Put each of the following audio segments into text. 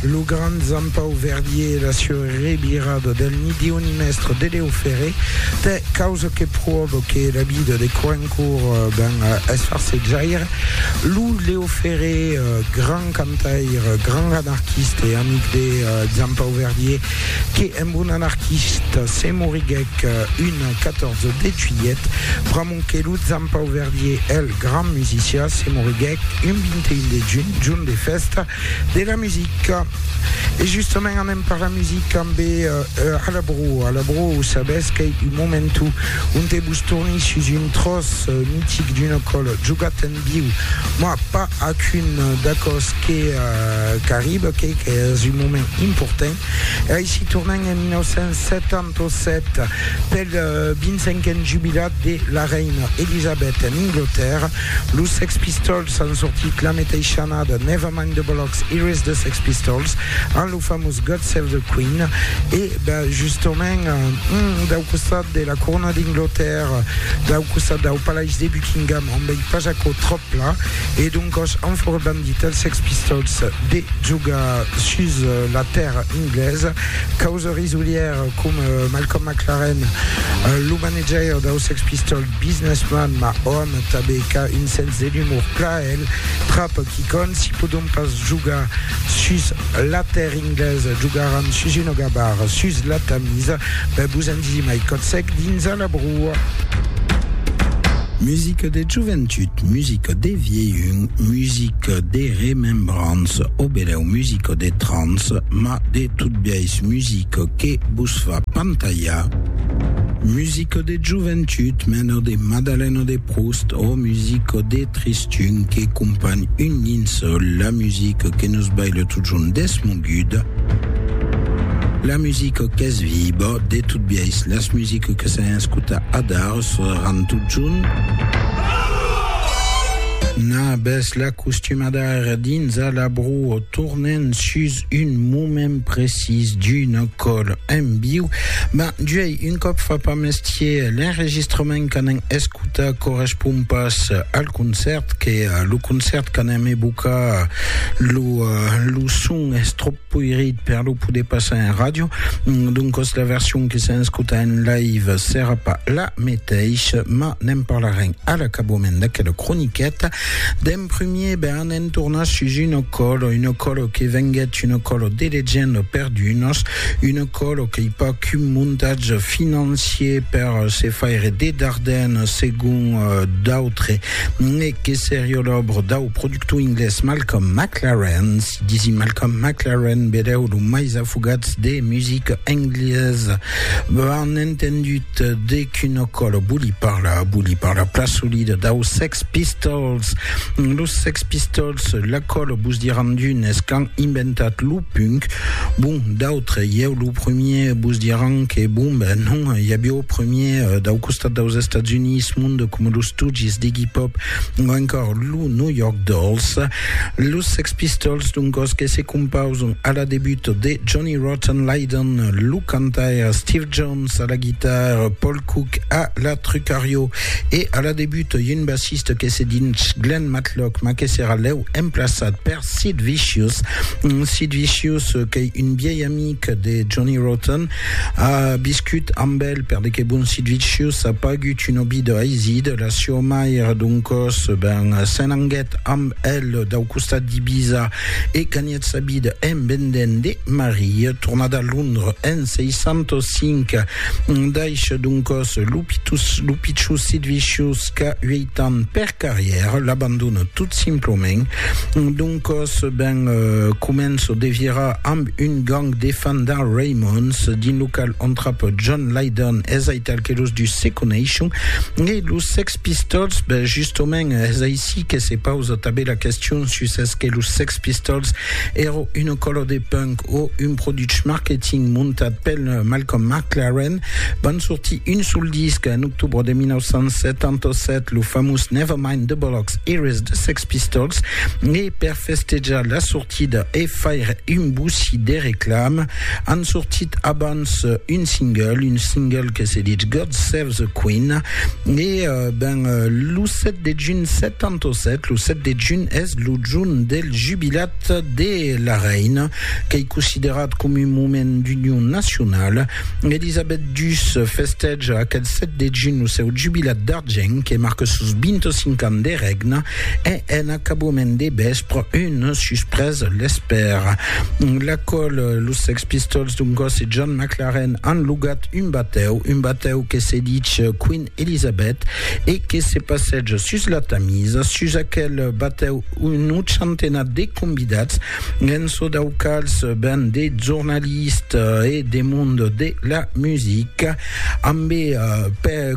Lo grand Jean-Pau Verdier e la sua revirada del midion mèstre de Leo Ferré, tè causa que pròva que la vida de Coencourt ben es farsetjaire. Lo Leo Ferré, grand cantaire, grand anarquiste e amic de Jean-Pau Verdier, que emb un anarquista se moriguèc un 14 de juilhet, Sonque lo Zampau Verdier, el grand musicià, se moriguèc un 21 de junh, jorn de fèsta de la musica. E justament anem per la musica ambe Alabro. Alabro, sabètz qu'ei un momentu onte vos torni sus un tròç mitic d'una còla, jogat en viu, mah, pas ac un d'aquò's que qu'arriba, qu'ei qu'es un moment important. E aicí tornem en 1970. 1907, pel 25n jubilat de la reina Elisabèth en Anglatèrra, los Sex Pistols an sortit la meteisha annada Never Mind the Bollocks, Here Is the Sex Pistols amb lo famós God Save the Queen e justament dau costat de la corona d'Anglatèrra, dau costat dau palais de Buckingham on vei pas aquò tròp pla e doncòs an fòra bandit els Sex Pistols de jogar sus la tèrra anglesa causa Risolièr com Malcolm McLaren, lo manajaire dau Sex Pistols Businessman, ma òm tabé qu'a un sens de l'umor plaèl trap qui quand si podon pas jogar sus la tèrr inglés jogaran sus una gabar sus la Tamis, ben vos en disi mai còth sec dins a la broa. Musica de joventut, musica de vièlhun, musica de remembrança, o belèu musica de trans, ma de Tot biais musica que vos fa pantalhar, musica de joventut mena de Madalena de Proust ò musica de Tristun que companh un linçòl, la musica que nos baila totjorn desmoguda, la musica qu'es viva, de tot biais las musica que s'an escotat adar sonaran totjorn. Nabes la costumada ara dins a la broa tornent sus un moment precís d'una còl en viu, ben juei un còp fa pas mestier, l'enregistrament qu'anem escutar correspond pas al concèrt, que lo concèrt qu'anem evocar lo, lo son es tròp poirit per lo poder passar en ràdio, doncas la version que s'en escuta en live serà pas la meteisha, mas ne'n parlarem a l'acabament d'aquela croniqueta. En primier, ben en tornar sus un ocòlo, un ocòlo que venguèt un ocòlo de legenda per d'unos, un ocòlo qu'ei pas qu'un montatge financier per se faire de dardèn segon d'autres, ne que serió l'òbra dau productor inglés Malcolm McLaren, si disi Malcolm McLaren, belèu lo mais afogats de musica englesa, ben entendut. De quina còla vòli parlar? Vòli parlar plan solida daus Sex Pistols. Los Sex Pistols, la còla vos diràn d'unes qu'an inventat lo punk, bon, d'autres, ieu lo premier, vos diràn que bon, ben non, i aviá o premier dau costat daus Estats Units monde coma los Stooges d'Iggy Pop o encòr lo New York Dolls. Los Sex Pistols, doncòs, que se compausan a la debut de Johnny Rotten Lydon, lo cantaire Steve Jones, Jones a la guitare, Paul Cook a la trucario e a la debut un bassiste que se dinch Glenn Matlock ma que serà lèu emplaçat per Sid Vicious. Sid Vicious qu'ei un vièi amic de Johnny Rotten, a viscut amb el per de que bon Sid Vicious a pagut un òbit aisit, la sieu mair doncòs ben s'en anguèt amb el dau costat d'Ibiza e ganhèt Eth sabid embendent de Marie, tornat a Londres en 605, daish doncòs lo pichussit viciós qu'a ueit ans per carrièr, l'abandona tot simplament. Doncòs, ben, començo de virar amb un gang de fandar Raymonds, dins lo qual entrapa John Lydon, es aital que los dus se coneishon e los sex Pistols, ben justement es aicí que se pausa tanben la question sus es que los Sex Pistols èro una cola de punk o un produch marketing montat pel Malcolm McLaren. Van sortir un sol disc en octobre de 1977, lo famós Nevermind the Bollocks, Here is the Sex Pistols, e per festejar la sortida Tida e faire un boussi de reclam, an sortit abans un single, un single que se ditz God Save the Queen, e ben lo 7 de junh 77, lo 7 de junh es lo jorn del jubilat de la reina, qu'ei considerat com un moment d'union nacionala. Elisabet ii festeja aqueth 7 de junh lo seu jubilat d'argent, que marque sos 25 ans de règne. E en acaboument de vèspre, una suspresa l'espèra. La còl, los Sex Pistols d'un còs e John McLaren an lugat un batèu, un batèu que se dich Queen Elizabeth e que se passeja sus la Tamisa. Sus aquel batèu, un ochantenat de convidats, en çò dau quals ven de jornalistes e de mond de la musica, ambé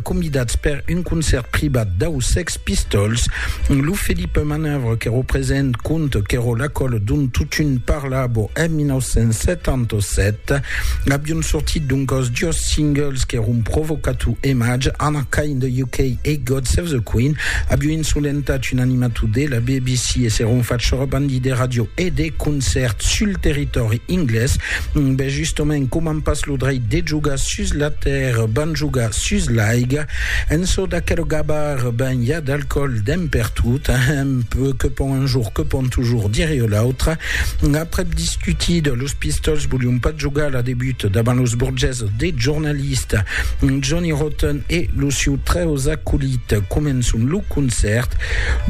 convidats per un concèrt privat dau Sex Pistols, lo Philippe Manœuvre que represent conte qu'èro l'acòl dont totun parlabo en 1977. Avion sortit doncòs jos singles qu'èron Provocato e Madge, Anna Kay in the UK e God Save the Queen. Avion insolentat un animator de la BBC e s'èron fach rebandi de ràdio e de concèrts sul territòri inglés. Ben justement, coman pas lo dreit de jogar sus la tèrra, van jogar sus l'aiga. En çò d'aquel gabar, ben, i a del còl d'en pertot, ahem, que pon un jorn, que pon tujorn, dire o l'autre. Aprèp discutida, los Pistols volion pas jogar la debut davant los borgeses de jornalista Johnny Rotten e lo siu trèus acolit. Començon lo concèrt,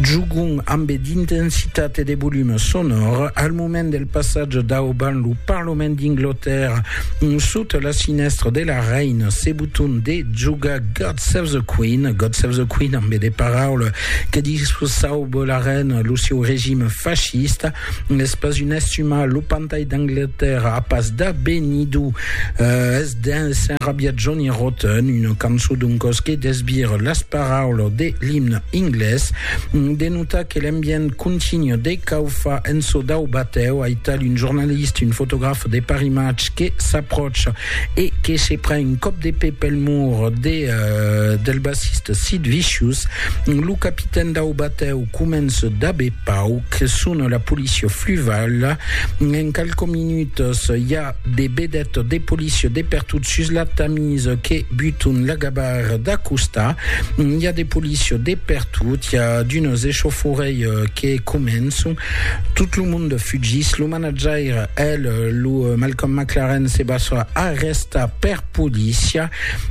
jogon ambe d'intensitat e de volume sonor. Al moment del passatge dauban lo Parlament d'Inglotèrra, sota la sinèstra de la Reina, se Ton de jogar God Save the Queen, God Save the Queen amb de paraula que discussau Bollaren lo sieu regime fascista, es pas un estumar, lo pantai d'Anglatèrra a pas d'abenidor, es d'un s'enrabiat Johnny Rotten, una cançon doncòs que desbir las paraulas de l'imne inglés, de notar que l'ambient continu de caufar en çò dau batèu, aital un jornalista, un fotograf de Paris Match que s'apròcha e que se pren un còp de pè pel mur de del bassista Sid Vicious, lo capitèn dau batèu comença dab e pauc, sona la polícia fluvala, en qualques minutas i a de vedètas de polícia de pertot sus la Tamis que buton la gabarra d'acostar, i a de polícia de pertot, i a d'unes echaufòrèi que començon, tot lo monde fugís, lo Jair el lo Malcolm McLaren se basa arresta per polícia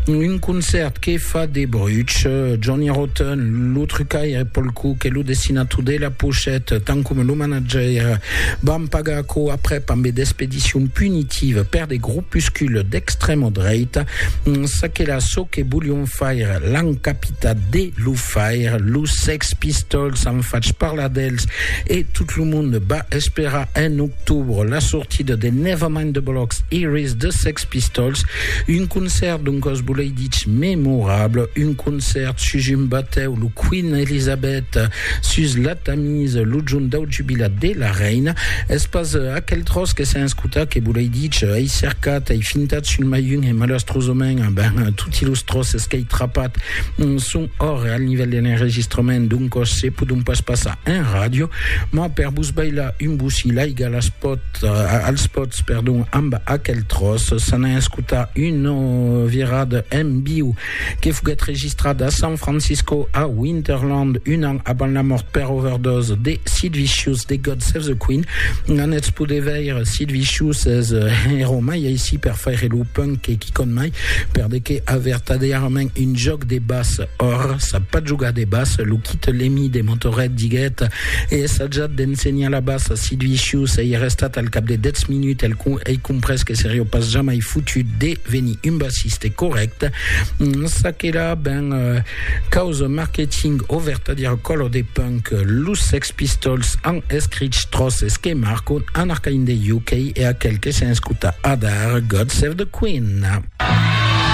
un concèrt que fa de bruch Johnny Rotten lo trucaire Paul Cook e lo dessinator de la pochette tant com lo manager van pagar aquò aprèp ambe d'expedicion punitiva per de gropuscules d'extrèma dreita çaquelà çò que volion faire l'an capitat de lo faire los Sex Pistols an fach parlar dels E tot lo monde va esperar en octobre la sortida de Nevermind the Bollocks Iris de Sex Pistols, un concèrt d'un còs volei dich memorable, un concèrt sus un batèu, lo Queen Elizabeth, sus la Tamise, lo jorn dau jubilat de la reina. Es pas aquel tròç que sèn escotat que volei dich, ei cercat, ei fintat sul mai un e malastrosament, ben, toti los tròces qu'ei trapat son Ora, al nivèl de l'enregistrament d'un còs se pòdon pas passar en ràdio, mas per vos bailar un bocí l'aiga las pòt, als pòts, perdon, amb aquel tròç. S'an a escotar una virada en viu que foguèt registrada a San Francisco, a Winterland, un an avant la mòrt per overdose de Sid Vicious de God Save the Queen. N'anètz poder veire Sid Vicious es ero mai aicí per faire lo punk que quicòm mai, per de que a vertadièrament un jòc de bas or sap pas jogar de bas lo quit l'emi de motoret diguet e essajat d'ensenhar la bas si duicius ei restat al cap de 10 minutes el com ei comprès que serio pas jamai fotut de venir un bassiste correct ça que là ben euh, causa marketing o vertadier color de punk los sex pistols han escrit tros es que marco en arcaïn de UK e aquel que s'enscuta adar God save the queen